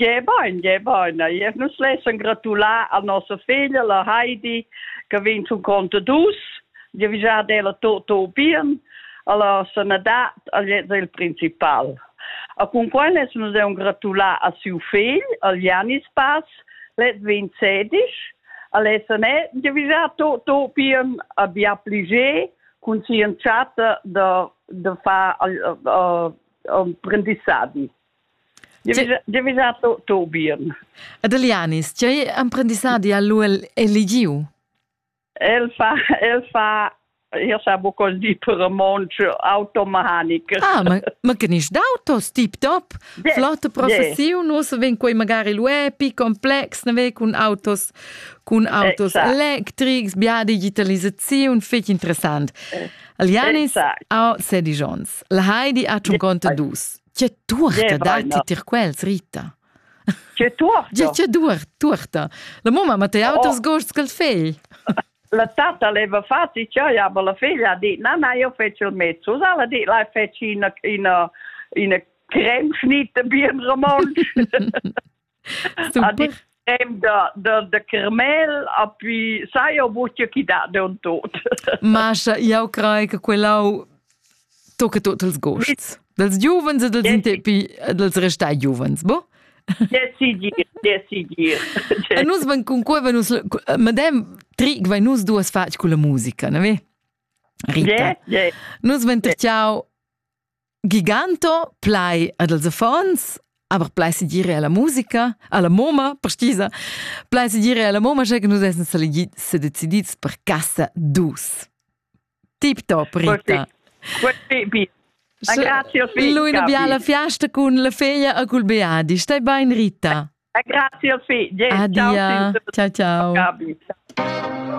Gie bein, gie bein. E nus lessen gratular a nossa figlia, la Heidi, che vegn zum Conte dus. Dio vi già della to to bien, alla sanadat, al del principal. A con quel les nus deun gratular a siu figl, al Janis Pass, let vin sedisch, a lesenet, dio vi già to to bien a bia pliger cun si entschatta da, da far uh, uh, uh, prendissadi. Devisato Tobian. Ed Elianis, tgei emprendissadi ha lu eligiu? El fa, el fa, io sa bu di per mont automahanic. Ah, ma, ma genisch d'autos, tip top? Yeah, Flotte professiun, yeah. nus ven quei magari lu epi, complex, ne ve cun autos, cun autos exact. electrics, bia digitalisaziun, fetg interessant. Elianis, exact. a sedi Jons. La Heidi ha tun conte dus. Tge tuorta datti tir quels, Rita? Tge tuorta? Tge tuorta? La mamma ma te auters oh. gosts ch'el fegl. La tata leva fati cioè, aber la figlia ha dit, na, na, io feci il mezzo, sa, la dit, lai feci ina, ina, ina creme schnita, bien romansch. a di da, da, da Carmel a pi sai o vuce chi da de un tot. Mascha, jau crei che quellau tocca tot els gosts. Dels giuvens e dels intepi, dels restai giuvens, bo? Decidir, decidir. E nus van con quei va nus madem tric vai nus duas fac con la musica, ne ve? Rita. Yeah, yeah. Nus van terciau Giganto plai ad els affons, aber plai si dire alla musica, alla moma, precisa, plai si dire alla moma che nus essen se decidits per casa dus. Tip top, Rita. Questi bi. Lui la biala fiasta con la figlia a cul Beadi. Stai bain, Rita. Grazie, Adia. Ciao, ciao. ciao.